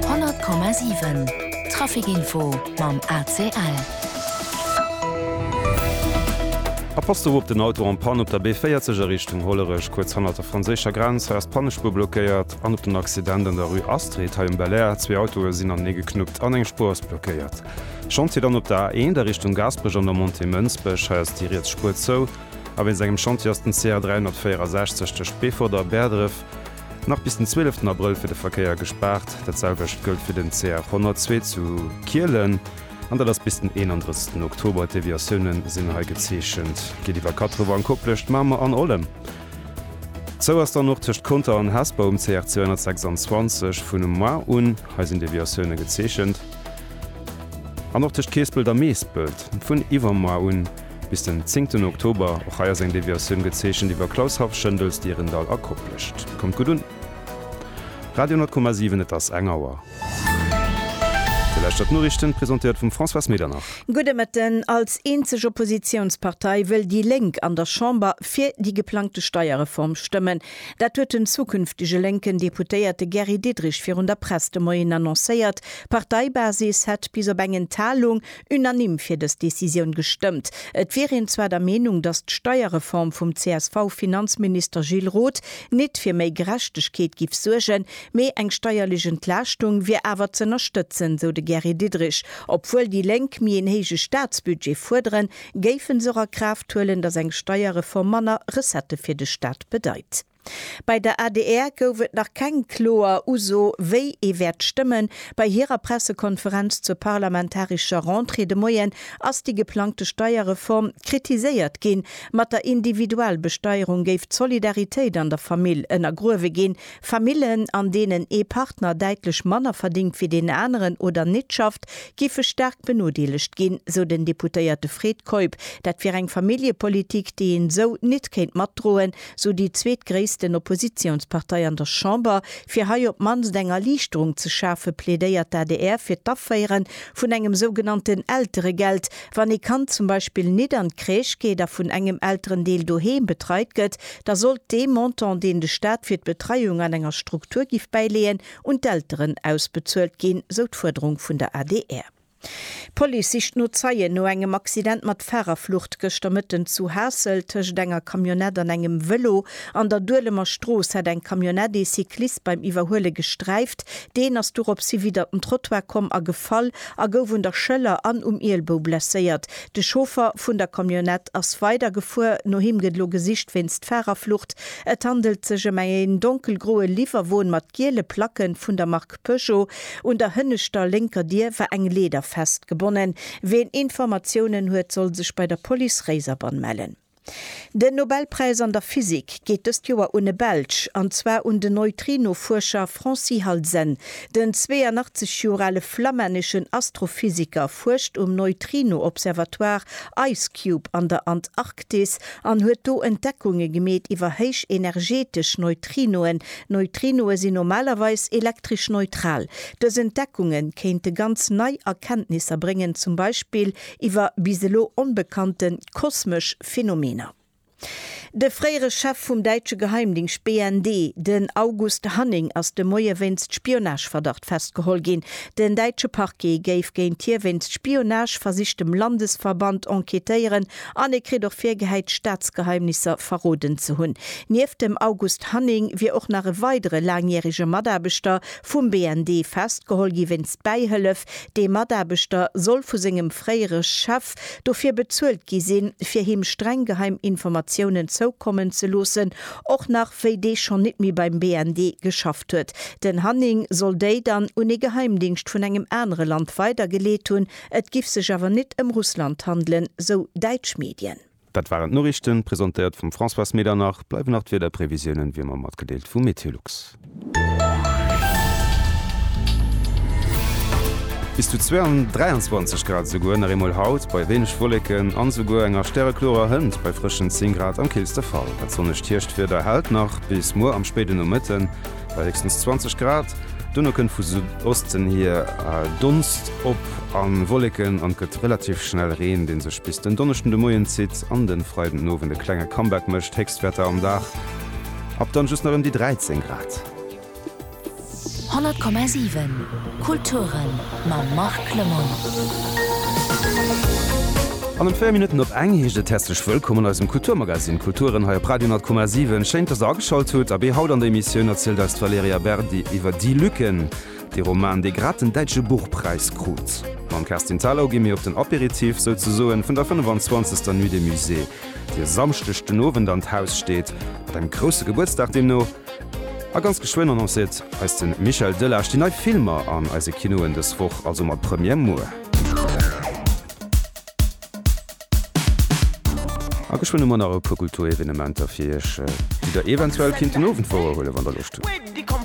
100,7 Trafic-Info mam ACL. A passt op op den Auto en panne op der B40 a Richtung Hollerech, kuerz hannert der franséischer Grenz. Hei ass d'Pannespuer blockéiert. An op den Accident an der Rue Astrid hei um Belair. Zwee Autoe sinn anenee geknuppt an eng Spuer ass blockéiert. Chantier dann op der A1 a Richtung Gaasperech an der Montée Mënsbech. Hei ass déi riets Spuer zou. A wéinst engem Chantier ass den CA 364 tëscht Beefort a Bäerdref. Nach bis den 12 Abrëll fir de Verkéier gespaart. Dat selwecht gëllt fir den CR 102 zu Kielen an dat ass bis den 31 Oktober. D'Deviatioune sinn hei gezeechent. Geet iwwer Kattrewer an Koplescht, Mamer an Ollem. Zou ass dann och tëscht Conter an Hesper um CR 226 vun um Mar un. Hei sinn Deviatioune gezeechent. An och tëscht Keespelt a Meespelt vun iwwer Mar un. Bis den zéngten Oktober. Och hei ass eng Deviatioun gezeechent iwwer Klaus Haff, Schëndels, Dierendall a Koplescht. Kommt gutt un! Radio 10,7 Et ass eng Auer. Fir leschter d'Noriichten, presentéiert vum Françoise Medernach. Gudde Mëtten. Als eenzeg Oppositiounspartei wëll déi Lénk an der Chamber fir déi geplangte Steierreform stëmmen. Dat huet den zukünftege lénken Deputéierte Gary Diderich virun der Press de Moien annoncéiert. D'Parteibasis hätt bis op eng Enthalung unanime fir dës Decisioun gestëmmt. Et wier een zwar der Meenung, datt d'Steierreform vum CSV-Finanzminister Gilles Roth nit fir méi Gerechtegkeet giff suergen, mee eng steierlech Entlaaschtung wier awer z'ënnerstëtzen, sou de Gary Diderich. Obwuel déi Lénk méi een héije Staatsbudget fuerderen, géifen se och a Kraaft huelen, datt eng Steierreform manner Recettë fir de Staat bedeit. Bei der adr gouf et nach keng kloer Uso, wéi ee wäert stëmmen. Bei hirer Pressekonferenz zur parlamentarescher Rentrée de Moien ass déi geplangte Steierreform kritiséiert ginn. Mat der Individualbesteierung géif d'Solidaritéit an der Famill ënnergruewe ginn. Famillen, an deenen ee Partner däitlech manner verdéngt wéi deen aneren oder nit schafft, géife staark benodeelegt ginn, sou den Deputéierte Fred Keup. Dat wier eng Familljepolitik, déi een esou nit kéint matdroen, sou déi zweetgréissten Oppositiounspartei an der Chamber, fir hei op d'mannst eng Erliichterung ze schafe plädéiert d'ADR fir d'Aféiere vun engem sougenannten Elteregeld, wann ee Kand zum Beispill nit an d'Crèche geet a vun engem Elterendeel doheem betreit gëtt, da sollt dee Montant deen de Staat fir d'Betreiung an enger Struktur giff bäileeën un d'Elteren ausbezuelt ginn, sou d'Fuerderung vun der adr. D'Police sicht no Zeien no engem Accident mat Fahrerflucht gëschter Mëtten zu Haassel. Tëscht enger Camionnette an engem Vëlo an der Duelemer Strooss hat eng Camionnette ee Cyclist beim Iwwerhuele gesträift. Deen ass dorops hi widder den Trottoir komm a gefall a gouf un der Schëller an um Ielbou blesséiert. De Chauffer vun der Camionnette ass weidergefuer. No him gëtt elo gesicht wéinst Fahrerflucht. Et handelt sech ëm een donkelgroe Liwwerwon mat. giele Placke vun der Mark Peugeot. Un der hënneschter lénker Dier war eng Leeder festgebonnen. Wien Informatiounen huet, soll sech bei der Police Réiserbann mellen. Den Nobelpräis an der Physik geet dëst Joer un e Belsch, an zwar un den Neutrinofuerscher Francis Halsen. Den 82 Joer ale flammänneschen Astrophysiker fuerscht um Neutrino-Observatoire IceCube an der Antarktis an huet do Entdeckunge gemeet iwwer héichenergetesch Neutrinoen, Neutrinoe sinn normalerweis elektresch neutral. Dës Entdeckunge kéinte ganz nei Erkenntnisser bréngen, zum Beispill iwwer bis elo onbekannte kosmesch Phenomener. De fréiere Chef vum däitsche Geheimdingscht BND, den August Hanning, ass de Moie wéinst Spionageverdacht festgeholl ginn. Den däitsche Parquet géif géint hie wéinst Spionage, versichtem Landesverband enquêtéieren An e kritt och virgehäit, Staatsgeheimnisser verroden ze hunn. Nieft dem August Hanning wier och nach e weidere laangjärege Mataarbechter vum BND festgeholl gi wéinst Bäihëllef. Dee Mataarbechter soll vu sengem fréiere Chef dofir bezuelt gi sinn, fir him streng geheim Informatiounen zoukommen ze loossen, och nach wéi dee schonn nit méi beim BND geschafft huet. Den Hanning soll déi dann un e Geheimdingscht vun engem anere Land weidergeleet hunn, Et giff sech awer nit ëm Russland handelen, sou däitsch Medien. Dat waren d'Noriichten, presentéiert vum Françoise Medernach. Bleiwen nach d'Wiederprevisiounen, wéi ëmmer, matgedeelt vum Meteolux. Bis zu 23 Grad esouguer nach eemol haut, bei wéineg Wolleken an esouguer enger stäreklorer Hënt bei frëschen 10 Grad am killste Fall. Dat sonnegt Hierschtwieder hält nach bis muer am spéiden Nomëtten. bei héchstens 20 Grad. Duerno kënnt vu Südosten hier Donst op a Wolleken an et gëtt relativ schnell Reen, dee sech bis den Donneschden de Moien zitt an de Freiden den Owend e klenge Comeback mécht. Héchstwäerter am Dag ab dann just nach ëm déi 13 Grad. 100,7 Kulturen. mam Marc Clement. An ëm 4 Minutten op eng heescht et häerzlech Wëllkomm an eisem Kulturmagazine Kulturen hei op Radio Nordkoma 7. Schéin, dass der ageschalt hutt. Abee, haut an der Emissioun erzielt eis d'Valerija Berdi iwwer Die Lücken, dee Roman, dee grad den Däitsche Buchpräis krut. Mam Kerstin Thalau gi mir op den Aperitif, souzesoen, vun der 25. Nuit des Musées, déi e Samschdeg den Owend an d'Haus steet, mat engem grousse Gebuertsdag deemno. A ganz geschwënn annoncéiert eis de Michel Delage déi nei Filmer an eise Kinoen dës Woch, also mat Première muer. A geschwënn hu mer nach e puer Kulturevenementer fir iech, déi der eventuell kinnt den Owend wouerhuelen, wann der Loscht hutt.